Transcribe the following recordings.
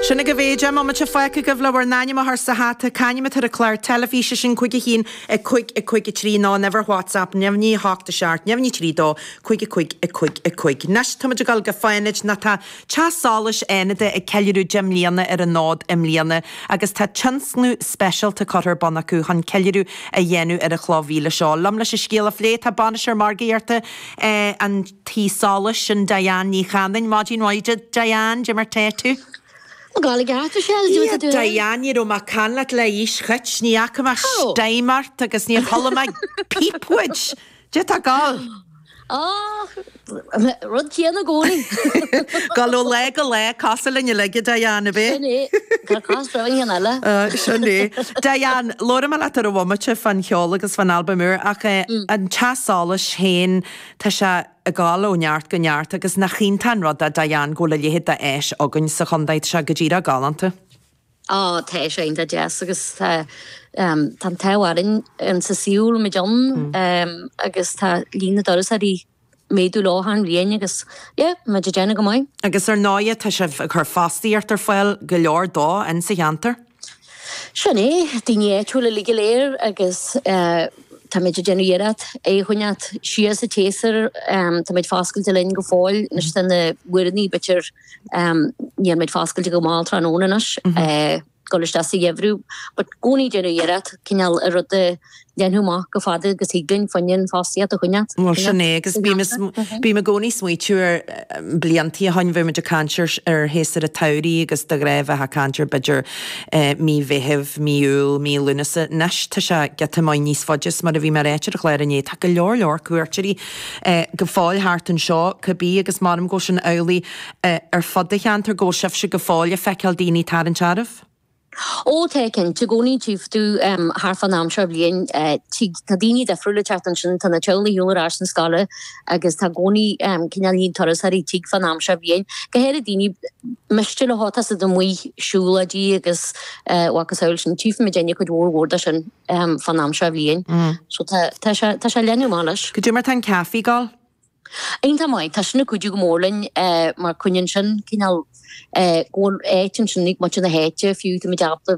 Sin agaibh é, deich mbomaite fágtha agaibh le bhur n-ainm a chur sa hata, c'ainm atá ar an clár teilifíse sin, cúig a haon, a cúig, a cúig a trí, nó ar WhatsApp, neamhní a hocht, a seacht, neamhní trí dó, cúig a cúig, a cúig, a cúig. Anois, táimid ag dul go Fánaid, nó tá Teach Solais Fhánaide ag ceiliúradh deich mbliana ar an fhód i mbliana agus tá tionscnamh speisialta curtha ar bun acu chun ceiliúradh a dhéanamh ar an chloch mhíle seo. Liom leis an scéal a phlé, tá bainisteoir margaíochta an. Tí solais sin Diane Ní Chanainn. Maidin mhaith duit Diane, cad é mar tá tú? Gàidhlig ata sé ag dul ag dul. Diane, ní raibh mé ag caint leat le haois choit, ní fhaca mé steam ort agus níor chuala mé píp uait. Cad é atá ag gabháil? Och, rud céanna gcónaí. Gabháil ó lá go lá, cosúil linn uilig, a Diane, a bhí? Sin é, tá cás breá in eile. Sin é. Diane, labhróidh mé leat ar an bhomaite fan cheol agus fan albam úr, ach an teach solais féin, Tá sé ag dul ó neart go neart agus nach iontach an rud é, Diane, go bhfuil a leithéid d'áis againn sa chontae. Tá sé go díreach galánta. Á, tá sé iontach deas agus tá an t-ádh orainn sa saol muid dó ann agus tá líon na dturasóirí ag méadú leo achan bhliain agus, yeah, muid ag déanamh go maith. Agus ar ndóighe, tá sibh ag cur fostaíocht ar fáil, go leor de, ins sa cheantar. Sin é, daoine áitiúla uilig go léir agus táimid ag déanamh iarracht é a choinneáil ag dul siar sa tséasúr. Táimid foscailte linn go fóill, anois tá na huaireanta, b'fhéidir, níl muid foscailte go mall tráthnóna anois, dul isteach sa gheimhreadh, but gcónaí ag déanamh iarracht cineál rud a, Dhéanamh chomh fada agus thig linn fuinneamh fostaíocht a choinneáil. Bhuel, sin é, agus bím i, bím i gcónaí ag smaoitiú ar bliantaí ó shin, bheadh muid ag caint ar, ar shéasúr a' tsamhraidh agus de ghnáth bheifeá a' caint ar b'fhéidir mí Mheithimh, mí Iúil, mí Lúnasa, 'nois tá sé giota maith níos faide 's mar a bhí mé a' ráit ar an chlár inné, tá go leor leor cuairteoirí go fóill thart anseo ca bith agus maram go bhfuil sin amhlaidh ar fud a' cheantar, go bhfuil sibhse go fóill a' feiceáil daoine tarraingt oraibh? Ó, tíonn. Tá i gcónaí tífidh tú thar fán am seo bhliain. Tig, tá daoine difriúil ag teacht ansin, tá na teaghlaigh ar shiúl ar ais chun na scoile agus tá gcónaí cineál líon turasóirí tig fán am seo bhliain. Go háirid daoine b'fhéidir atá ag dul amuigh ar siúlóidí agus a mhacasamhail sin. Tífidh muid déanamh cuid mhór mhór de sin fán am seo bhliain. So tá, tá sé, tá sé leanúnach anois. Cad é mar tá an caifé ag gabháil. Iontach maith. Tá sin ag cuidiú go mór linn mar coinníonn sin cineál go bhfuil áit ansin ag muintir na háite fiú tá muid ábalta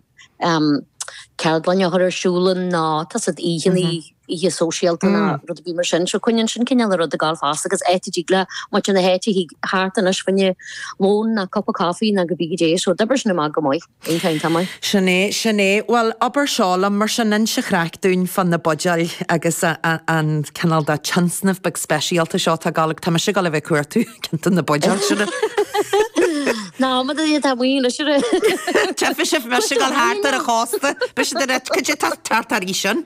ceardlanna a chur ar siúl ann nó tá saghas oícheanna, oíche sóisialta nó rud éigin mar sin. So coinníonn sin cineál an rud ag dul fosta agus áit a dtig le muintir na háite theacht thart anois faoina lón nó cupa coffee nó cibé cad é. So d'oibrigh sin amach go maith. Bíonn caint agam air. Sin é, sin é. Bhuel, abair seo liom, mar sin inis an chraic dúinn fá na buidéil agus an cineál de tionscnamh beag speisialta seo atá ag gabháil agat. Tá mise ag gabháil le bheith cuartú, cinnte, na buidéal, sure. Ná, mura dtí atá maoin, sure. Teipfidh sibh, bheadh mise ag gabháil thart ar an chósta. Beidh siad ar an, could you, tá thart thar aois ann.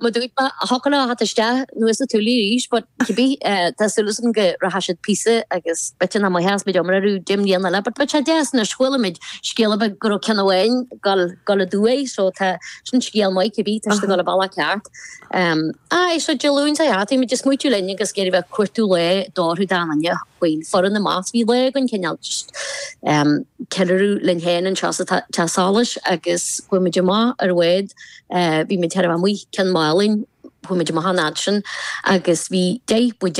Má dúirt mé, Thug an áth isteach, nó is tú liath arís, ach cibé, tá súil agam go rachaidh siad píosa agus b'fhéidir in am go gcluinfidh muid iomrá orthu deich mbliana eile, but tá deas anois, chualaimid scéal ar bith go raibh ceann amháin gal, gal a dtuaith, so tá, sin scéal maith, cibé, tá siad ag dul ar bith lá ceart. Aye, so Dé Luain sa Gheata, bhí muid ag smaoitiú linn agus ag iarraidh bheith ag cuartú lae do orthu dá ndaingne faoin foireann i measc, bhí lá againn cineál just ceiliúradh linn féin anseo sa teach solais agus chuaigh muid amach ar an bhád, Bhí muid thar amuigh ó Ceann Málainn, chuaigh muid amach an fhad sin agus bhí deich buidéal